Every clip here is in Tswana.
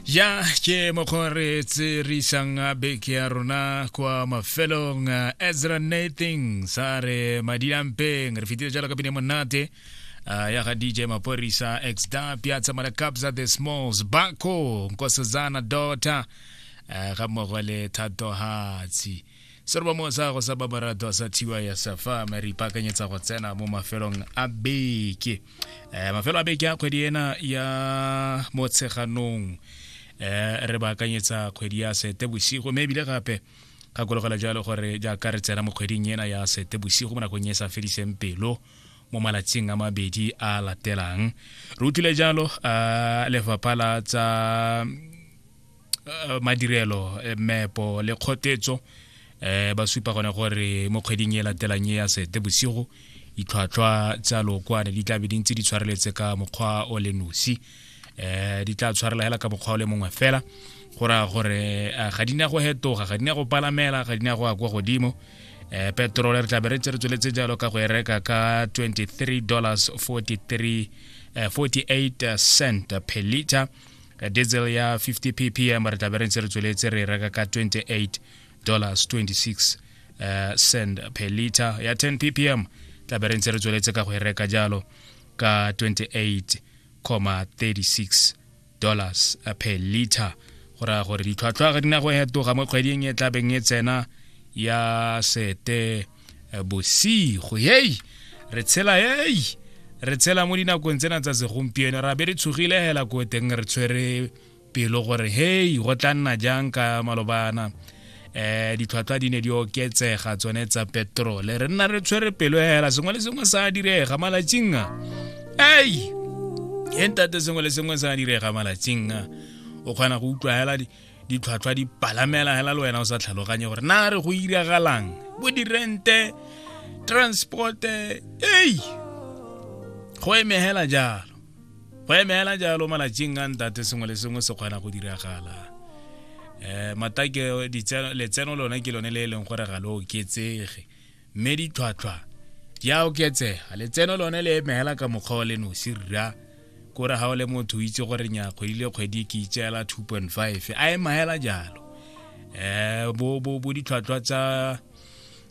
ya ke mokgwa re tse re isang beke ya rona kwa mafelong ezra nathing sa re madi a mpeng re fetile jalo ka pine monate uh, ya ga dj maporisa exda piazza malakabza the smalls bako nkosazana dota uh, ga mmogo le thato hatsi serwa mo sa go sa babaratwa sa thiwa ya safa me re ipaakanyetsa go tsena mo mafelong a beke um mafelo a beke a kgwedi ena ya motsheganong um re baakanyetsa kgwedi ya sete bosigo mme ebile gape gakologela jalo gore jaaka re tsena mo kgweding ena ya sete bosigo mo nakong e sa fediseng pelo mo malatsing a mabedi a latelang re utlwile jalo um lefapha la tsa eh, madirelo eh, mepo le kgotetso um ba supa gone gore mo kgweding e latelang e ya sete bosigo ditlhwatlhwa tsa lookwane di tlabe di ntse di tshwareletse ka mokgwa o le nosi um di tla tshwarela hela ka mokgwa o le mongwe fela go raya gore ga di ne go hetoga ga di ne go palamela ga di ne go ya kwa godimo um petrole re tlabe re tse re tsweletse jalo ka go e reka ka 23 dollars 43 48 eh, cent per liter ka diesel ya 50 ppm re tlabe re ntse re tsweletse re e reka ka 28 dollars 26 uh, cent per liter ya 10 ppm tlabe re ntse re tsweletse ka go e reka jalo ka 28,36 dollars eh, per liter go raya gore ditlhwatlhwa ga di na go hetoga mo kgweding e tlabeng e tsena ya sete eh, bosigo hei re tshela hei re tshela mo dinakong tsena tsa segompieno ra be re tshogile hela ko teng re tshwere pelo gore hei go tla nna jang ka malobana eh ditlhwatlhwa di ne di oketsega tsone tsa petrole re nna re tshwere pelo hela sengwe le sengwe sa direga malatsing a ei e ntate sengwe le sengwe sa direga malatsing a o kgona go utlwa hela ditlhwatlhwa di palamela hela le wena o sa tlhaloganye gore na re go iragalang bo dirente transporte ei go emegela jalo go emegela jalo malatsing a ntate sengwe le sengwe se kgona go diragala um matake letseno lone ke lone le e leng gore ga le oketsege mme ditlhwatlhwa di a oketsega letseno lone le emegela ka mokgwa wa le nosi rra kore ga o le motho o itse gore nya kgwedi le kgwedi ke itseela 2.5 a e maela jalo um bo, bo, bo ditlhwatlhwa tsa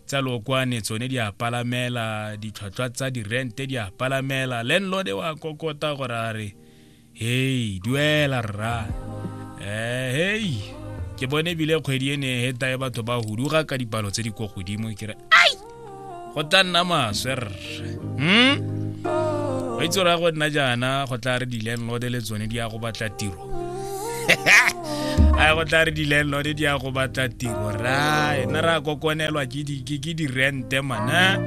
tsa lokwane tsone di a palamela ditlhwatlhwa tsa dirente di a palamela landlord wa kokota gore a re hei duela rra um hei ke bone ebile kgwedi e ne e heta e batho ba huduga ka dipalo tse di ko godimo ke re go tla nna maswe rre hmm? ba itse raya go nna jaana go tla re di-landlord le tsone di ya go batla tiro a go tla re di-landlord di ya go batla tiro ra ena ra kokonelwa ke di-rente mana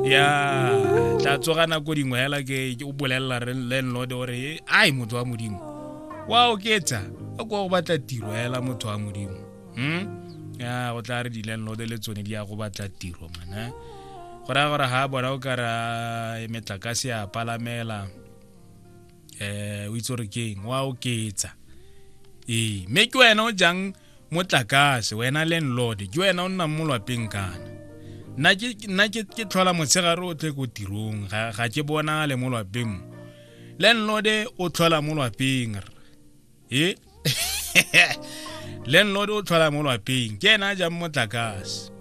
ya tla tsoga nako dingwe fela ke o bolelela landlord gore ai motho wa modimo wa oketsa a kwa go batla tiro fela motho wa modimo hmm? ya go tla re di-landlord le tsone di ya go batla tiro mana go raya gore ga bona o kara e metlakase ya palamela um o itse gore keng wa oketsa ee mme ke wena o jang motlakase wena landlord ke wena o nnang mo lwapeng kana nna ke tlhola motshegare o tle ko tirong ga ke bonale mo lwapeng mo landlord o tlhola mo lwapeng e landlord o tlhola mo lwapeng ke ena a jang motlakase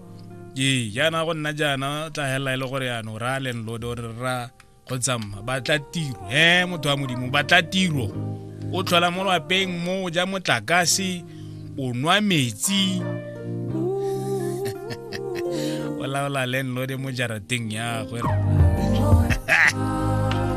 ee jaana go nna jaana o tla helela e le gore yana o raya landlord o re ra go tsamma batla tiro e motho wa modimo batla tiro o tlhola mo lwapeng mo o ja motlakase o nwa metsi o laola landlord mo jarateng ya gwe